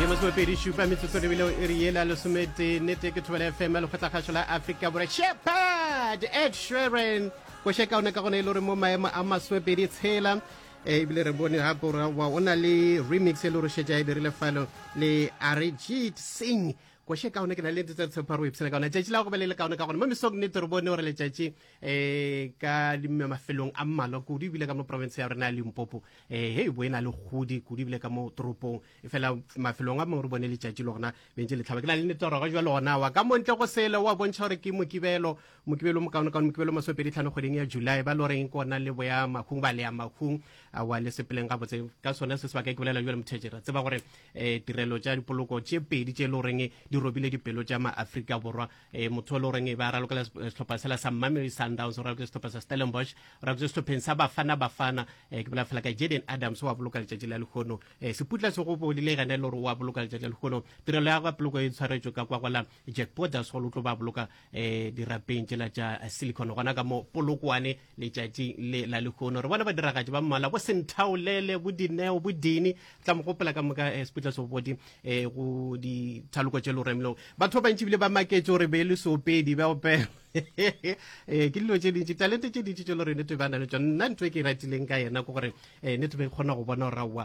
ye masomepedi šupa metsotso lebeleo e re yela lesometee nete ke thobela fm lekgotlakgašo la afrika bore shepard ed sheren koše kaone ka gone e le gore mo maemo a masomepedi tshela eh, ebile re bone gape gore wa o na le remix e le gore šetša e dirile falo le arijit singh koše kaone ke na le nte tsa tshepha re o ipshela kaone tšatši la go be le le kaone ka gone mo mesong nete re bone gore letšatši eh ka dimme mafelong a mmalwa kudu ebile ka mo province ya rena ya limpopo um eh, he bo e na le godi kudu ebile ka mo toropong e fela mafelong a mangwe re bone letšatši le gona bentse letlhaba ke na le netoroga jwa lona wa ka montle go sele wa bontšha gore ke mokibelo mokibelo mokaonekaone mokibelo masopedi tlhano kgweding ya july ba le goreng ke ona le boya makhung ba leya makhung wa le sepeleng gabotse ka sone se sebaka ke bolela jale mothetše ra tseba gore um tirelo tša dipoloko tše pedi tše e le goreng di robile dipelo tša maaforika borwa e motho le goreng e ba ralokela setlhopha sela sa mamery sundowns o raloketse setlhopha sa stellenbosch o raloketse setlhopheng sa bafana bafana um ke bola fela ka jaden adams wa boloka letšatši la lekgono um seputla se go bolile gane le gore wa boloka letšatši la lekgono tirelo ya gapoloko e tshwaretswe ka kwa gola jack borders go lo tlo ba boloka um dirapeng tšela tša silicon gona ka mo polokwane letšatšing le la lehono re bona badiragatši ba mmala bo senthaolele bo dineo bo dini tla mo gopola ka moka eh, seputla sobodi eh, go dithaloko tše loremlong batho ba bantši bile ba maketše gore be e le soopedi ba opela eh, ke dilo tše dintši talente tše dintši tše le gore nete ba na le tsone nna ntho e ke e ratileng ka yena ke gore eh, nete be e kgona go bona gore aowa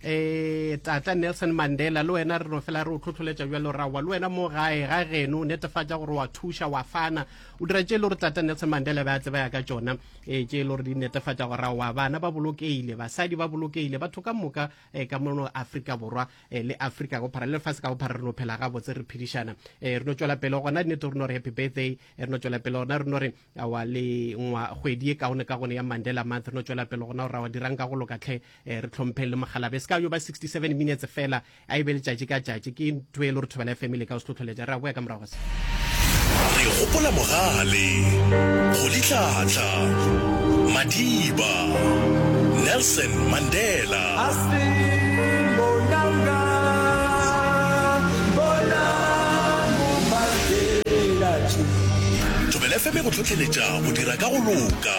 eh tata nelson mandela le wena re no fela re o tlhotlholetša bjalo rawa le wena mo gae ga geno o netefatša gore wa thuša wa fana o dira tše e le gore tata nelson mandela ba tle ba ya ka tšona um tše e le gore di netefatša gore rawa bana ba bolokeile basadi ba bolokeile batho ka moka um ka mono afrika borwa um le afrika go phara le lefase ka go phara re no phela gabotse re phedišana um re no tšwela pele gona nnete re no re happy birthday re no tšwela pele gona re no re awa le ngwa kgwedi e kaone ka gone ya mandela month re no tšwela pele gona gore rawa dirang ka go loka tlhe eh, re tlhompheng le mogalabe se ka yo ba 67 minutes fela a e be letšatši ka tšatši ke ntho e le gore thobela fm le ka o se tlhotlholetša re a boya ka morago se re gopola mogale go ditlhatla madiba nelson mandela thobela fm go tlhotlheletša go dira ka go loka